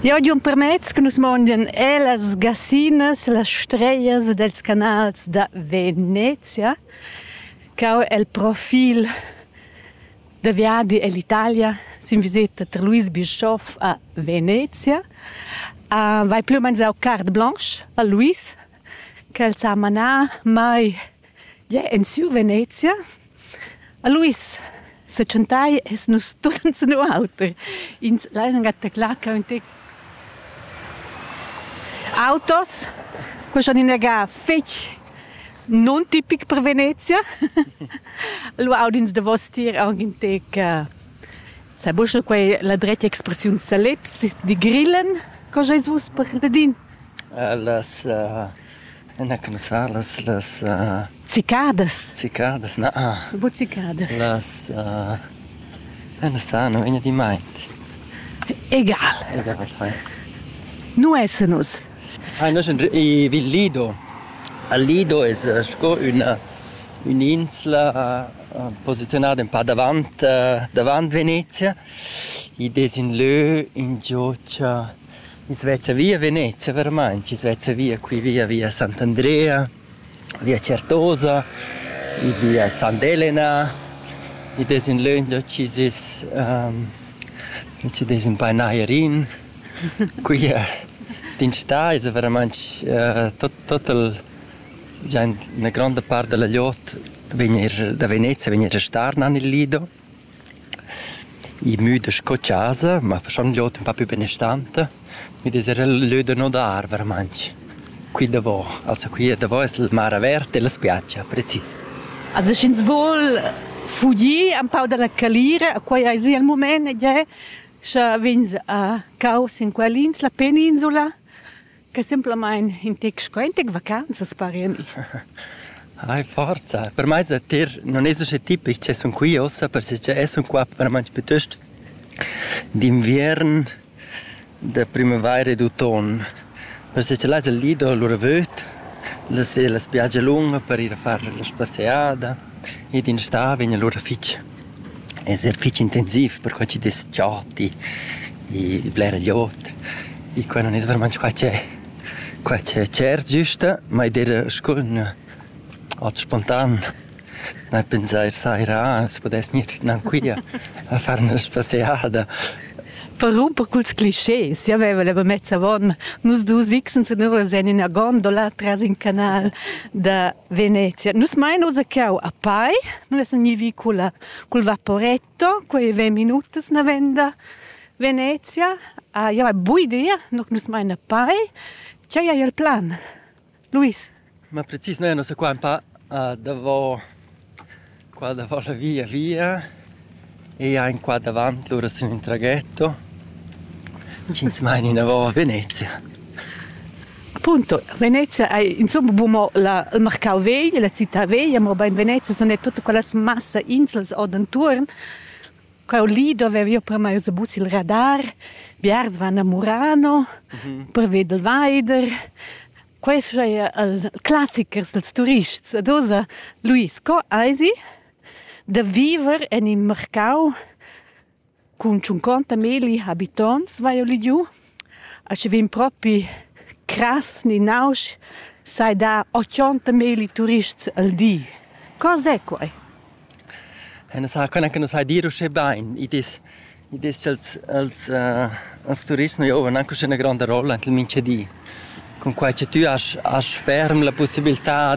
Jau di empermez che nus mondian e las gassinas, las strejas dels canals da Venezia, ch'eu el profil da viadi ell Italia sin viseta tar Luis Bischoff a Venezia. Vai plü u mains eu carte blanche a Luis, ch'el s'ha manà mai Ja, en sur Venezia. A Luis sa chantai es nus tut insinu auter. Ins laina gataclà quaunte autos cuschan inagà fetg non tipic per Venezia. Allura aud'ins davostier aunc in tec eh, sai buca quei la dretga expressiun saleps, di grillen. Co scheis vus per ladin? Las eh, Na cumenzà las las cicadas cicadas na bucicadas las na sano in di mai egal egal nu esse nus Ai nos i vin Lido a Lido es sco üna ün'insla posiziunada ün pa davant davant Venezia id es ün lö ingio cha Ins vezza via Venezia vermaint, ins vezza via qui via via Sant'Andrea, via Certosa, id via Sant'Elena, id es in lönch da chi s'es chi dess ün pa nair in. Qui d'in stà esa veramaint tot tot il già üna gronda part da la glieud vegn eir da Venezia vegn eir a star nan il Lido. I müda sco chasa, ma faschond l'ot ün pa pü benestanta, mi dess eir lö da nodar veramaint. Qui davò, also qui davò es la mar averta e la spiatscha, precis. Also sch'ins voul fugir ün pau da la calira, a quai aisi il mumaint ed è, scha vegns a cau sin quell'ins, la peninsula, che simplamain in tec sco in tec vacanzas pari a mi. Ai, forza! Per mai sa tir non es usche tipic che sun qui ossa, perche e sun qua per manch piuttost d'inviern, da primavaira e d'automn. Perche là es il lì da lura vöd, la sera la spiagia lunga per ir a far la spasseada ed in sta vegn lura fich. Esser fich intensiv per co chi dess chati e bler glieud. E quai nun es vermaint qua che qua che tschert güsta, ma id eira scurn at spontan nà pensair saira ah as pudess gnir gnancuia a far 'na spasseada. Per rumper culs clischés, jau vaiva la mezza von, nus dus X senura sen ina gondola tras in canal da Venezia. Nus mein ussa cau a Pai, nus essan gnivi culla, cul vaporetto, quei ventg minutas navenda Venezia. Ah, ja, bui dia, no nus mein a Pai. Tgei ei il plan? Luis? Ma precis, noi annos qua un pa uh, davo Qua davo la via via eia in qua davant lura sin ün traghetto ch'ins maina inavo a Venezia. Appunto, Venezia ei insomma bu mo la, il marcau vegl, la città veglia, mobein Venezia sun er tutta quellas massa inslas ord entuorn. Quel li dovev jeu premai uss bus il radar, biars van a Murano per veder il veider. Quei sch'ei el classichers dals turists ad oza Luis, co eisi da viver en in marcau cun tschunconta milli habitonts, vai oli giu? A sche vegn propi crass ni nausch, sai dar ochonta milli turists al di. Co sez quei? Ün sa quella che nus hai dir uschè bain. Id es id es cha'ls els els turists nu giovan anche üschè üna gronda rolla ent il minchadi. Cunquai cha tü hast hast ferm la pussibiltà